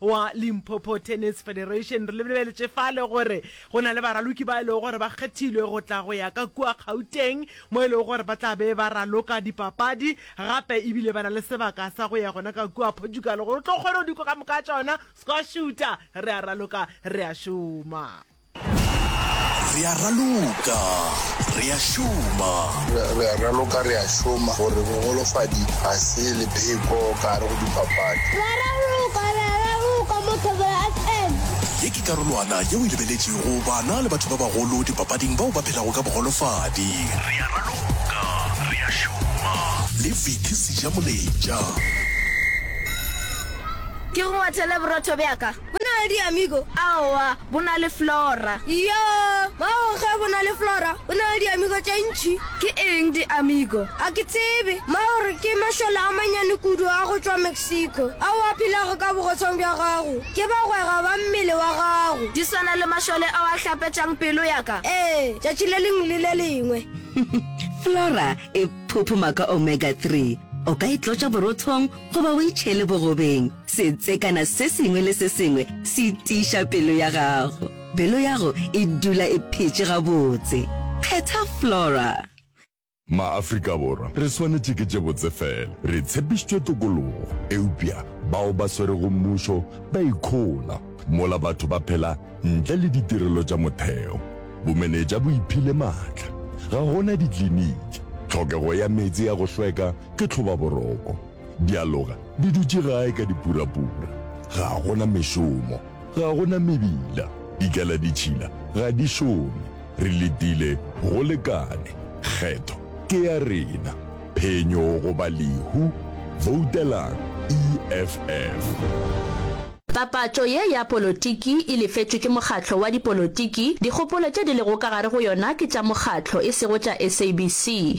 wa Limpopo Tennis Federation. Re lebeletše fale gore go na le baraloki ba e lego gore ba kgethilwe go tla go ya ka kua Gauteng mo e lego gore ba tla be ba raloka dipapadi gape ebile ba na le sebaka sa go ya gona ka kua Portugal gore o tlo kgone go diko ka moka tšona squashuta re a raloka re a šoma. Re a raloka, re a šoma. Re a raloka, re a šoma. Gore bogolofadi ga se lepheko ka gare go dipapadi. Re a raloka, re a raloka mo Thobela FM. Ye ke karolwana yeo e lebeletšego bana le batho ba bagolo dipapading bao ba phelago ka bogolofadi. Re a raloka, re a šoma. Le Vicky Sejamoletša. Ke go ngwathele borotho bja ka. Bo na le diamigo? Aowa, bo na le flora. Iyoo, mago ge bo na le flora, bo na le diamigo tše ntši. Ke eng diamigo? Ga ke tsebe. Mago re ke mašole a mannyane kudu a go tšwa Mexico, ao a phelago ka bogotshong bja gago. Ke bagwera ba mmele wa gago. Di swana le mašole ao a hlapetšang pelo ya ka? Ee, tšatši le lengwe le le lengwe. Flora e phophoma ka omega-three. O ka e tlotša borothong goba o e tšhele bogobeng. Setse kana se sengwe le se sengwe se tiiša pelo ya gago. Pelo yago e dula e phetše gabotse. Kgetha Flora. MaAfrika Borwa re swanetše ke tše botse fela. Re tshepištšwe tokologo, eupša bao ba swerego mmušo ba ikhola. Mola batho ba phela ntle le ditirelo tša motheo. Bomenetša bo iphile maatla. Ga go na dikliniki. Tlhokego ya meetse ya go hlweka ke tlhobaboroko. Dialoga di dutše gae ka dipurapura. Ga go na mešomo. Ga go na mebila. Dikaladitšhila ga di šome. Re letile go lekane. Kgetho ke ya rena. Phenyo goba lehu, voutelang EFF. Papatšo ye ya polotiki e lefetšwe ke mokgatlo wa dipolotiki. Dikgopolo tše di lego ka gare go yona ke tša mokgatlo, e sego tša SABC.